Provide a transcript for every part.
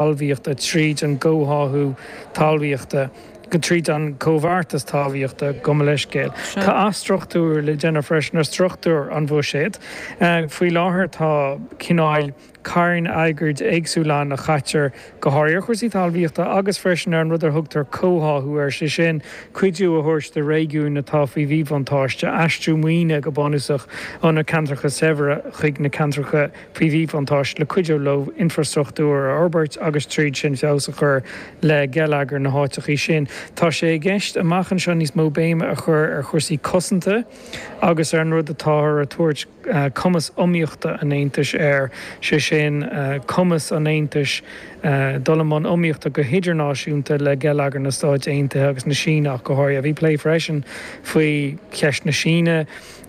talmhaíochta, tríd an gcomhtháthú talmhaíochta, tríd an gcomhbheartas talmhaíochta, gabh mo leithscéal, tá athstruchtúrú le déanamh freisin ar struchtúr an bhuiséid. Faoi láthair tá cineál cairn airgid éagsúla ann a chaitear go háirithe ar chúrsaí talmhaíochta agus freisin ar an rud a dtugtar comhtháthú air, sé sin, cuidiú a thabhairt do réigiúin atá faoi mhíbhuntáiste, aistriú maoine go bunúsach ó na ceantracha saibhre chuig na ceantracha faoi mhíbhuntáiste le cuidiú leo infreastruchtúr a fhorbairt agus tríd sin feabhas a chur le geilleagar na háiteachaí sin. Tá sé i gceist amach anseo níos mó béime a chur ar chúrsaí cosanta agus ar an rud atáthar ag tabhairt cumas iomaíochta an Aontais air, sé sin cumas an Aontais dul i mbun iomaíochta go hidirnáisiúnta le geilleagar na Stáit Aontaithe agus na Síne ach go háirithe. Bhí plé freisin faoi cheist na Síne.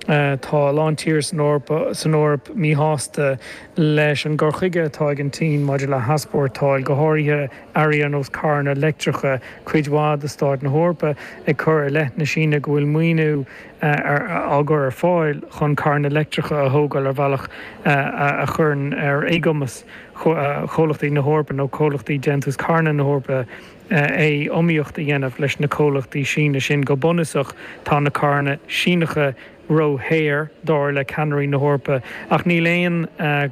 Tá a lán tíortha san Eoraip míshásta leis an gcur chuige atá ag an tSín maidir le heaspórtáil, go háirithe earraí ar nós carranna leictreacha, cuid mhaith de stáit na hEorpa ag cur i leith na Síne go bhfuil maoiniú á chur ar fáil chun carranna leictreacha a thógáil ar bhealach a chuireann ar éagumas comhlachtaí na hEorpa nó comhlachtaí déantús carranna na hEorpa é iomaíocht a dhéanamh leis na comhlachtaí Síne sin. Go bunúsach, tá na carranna Síneacha róshaor, dar le ceannairí na hEorpa, ach níl aon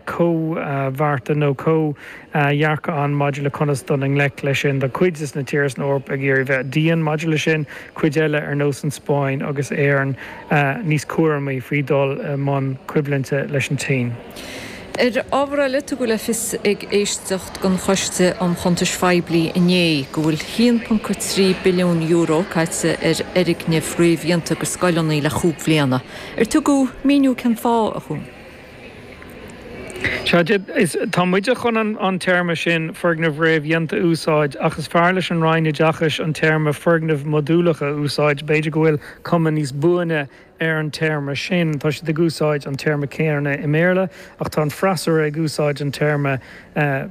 chomhbheartas nó comhdhearcadh ann maidir le conas dul i ngleic leis sin. Tá cuid de na tíortha san Eoraip ag iarraidh bheith dian maidir leis sin, cuid eile, ar nós an Spáinn agus Éirinn, níos cúramaí faoi dhul i mbun coimhlinte leis an tSín. Ar ábhar eile, tugadh le fios ag éisteacht den Choiste um Chuntais Phoiblí inné go bhfuil €1.3 billiún caite ar fhoirgnimh réamhdhéanta do scoileanna le chúig bhliana. Ar tugadh míniú cén fáth, a Choinn? Sea, tá muid chun an téarma sin, foirgneamh réamhdhéanta, a úsáid ach is fearr leis an Roinn Oideachais an téarma foirgnimh mhodúlacha a úsáid. B'fhéidir go bhfuil cuma níos buaine ar an téarma sin. Tá siad ag úsáid an téarma céanna i mBéarla ach tá an freasúra ag úsáid an téarma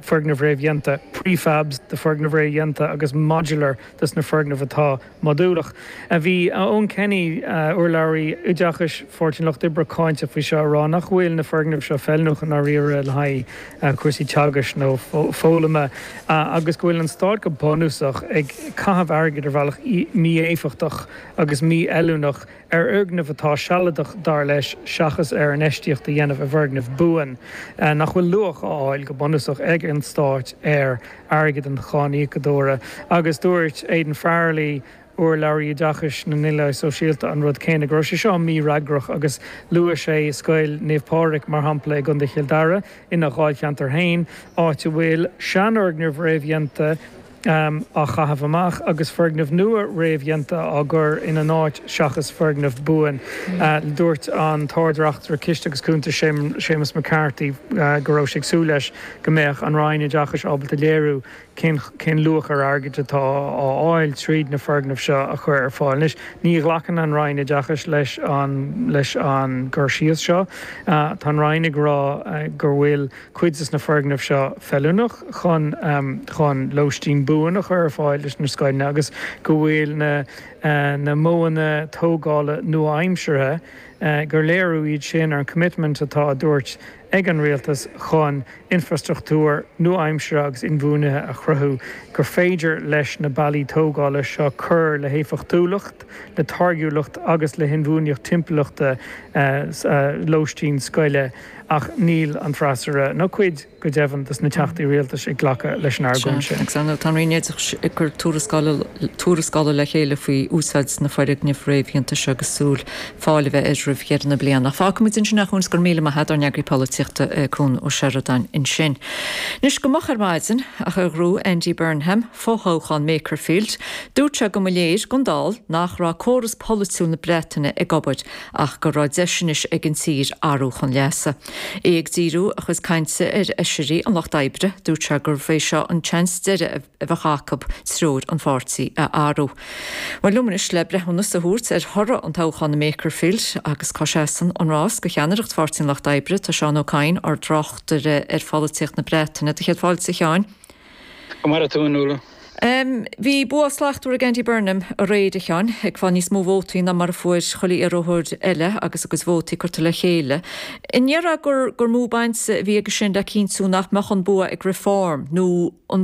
foirgnimh réamhdhéanta, prefabs do foirgnimh réamhdhéanta agus modular dos na foirgnimh atá modúlach. Bhí Eoghan Kenny, urlabhraí oideachais Pháirtí an Lucht Oibre cáinteach faoi seo, ag rá nach bhfuil na foirgnimh seo feiliúnach i ndáiríre le haghaidh cúrsaí teagaisc nó foghlama agus go bhfuil an stát go bunúsach ag caitheamh airgid ar bhealach mí-éifeachtach agus mífheiliúnach. ar fhoirgneamh atá sealadach, dar leis, seachas ar infheistíocht a dhéanamh i bhfoirgneamh buan nach bhfuil luach á fháil go bunúsach ag an Stát ar airgead an cháiníocadóra. Agus dúirt Aidan Farrelly, urlabhraí Oideachais na nDaonlathaithe Sóisialta, an rud céanna, go raibh sé seo mífhreagrach agus luaigh sé Scoil Naomh Pádraig mar shampla i gContae Chill Dara, ina dháilcheantar féin, áit a bhfuil seanfhoirgnimh réamhdhéanta. á chaitheamh amach agus foirgnimh nua réamhdhéanta á gcur ina n-áit seachas foirgneamh buan. Dúirt an tArd-Reachtaire Ciste agus Cuntas, Séamus McCarthy, go raibh sé ag súil leis go mbeadh an Roinn Oideachais ábalta léiriú cén luach ar airgead atá á fháil tríd na foirgnimh seo a chur ar fáil anois. Ní ghlacann an Roinn Oideachais leis an gcur síos seo. Tá an Roinn ag rá go bhfuil. cuid de na foirgnimh seo feiliúnach chun chun lóistín buan a chur ar fáil leis na scoileanna agus go bhfuil na na modhanna tógála nua-aimseartha, gur léiriú iad sin ar an choimitmint atá á dtabhairt ag an Rialtas chun infrastruchtúr nua-aimseartha agus inbhuanaithe a chruthú, gur féidir leis na bealaí tógála seo cur le héifeachtúlacht, le táirgiúlacht agus le hinbhuanaitheacht timpeallachta lóistín scoile. Ach níl an freasúra, nó cuid, go deimhin, dos na teachtaí rialtais, ag glacadh leis an argóint sin. Sea, agus tá an Roinn Oideachais ag cur tuarascála le chéile faoi úsáid na foirgneamh réamhdhéanta seo agus súil fáil a bheith air roimh dheireadh na bliana. Fágfaidh muid ansin é, a Chuain, go raibh míle maith a't ár n-eagraí polaitíochta, Cuan Ó Seireadáin, ansin. Anois, go moch ar maidin, agus gur ghnóthaigh Andy Burnham, fo-thoghchán Makerfield, dúirt sé go mba léir don dall, nach raibh córas polaitiúil na Breataine ag obair, ach go raibh deis anois ag an tír athrú chun leasa. É ag díriú a chuid cainte ar fheisirí an Lucht Oibre, dúirt sé gurbh é seo an seans deiridh a bheadh acu treoir an pháirtí a athrú. Bhuel, liom anois le breithiúnas a thabhairt ar thoradh an toghcháin i Makerfield, agus cá seasann an rás go ceannaireacht Pháirtí an Lucht Oibre. Tá Seán Ó Cadhain, ár dtráchtaire ar pholaitíocht na Breataine, do chéad fáilte, a Sheáin. Go maire tú, a Nuala. Bhí bua slachtmhar ag Andy Burnham aréir, a Sheáin, ag fáil níos mó vótaí ná mar a fuair chuile iarrthóir eile agus a gcuid vótaí curtha le chéile. An ndéarfá gur mó baint a bhí aige sin le cinntiú nach mbeadh an bua ag Reform nó an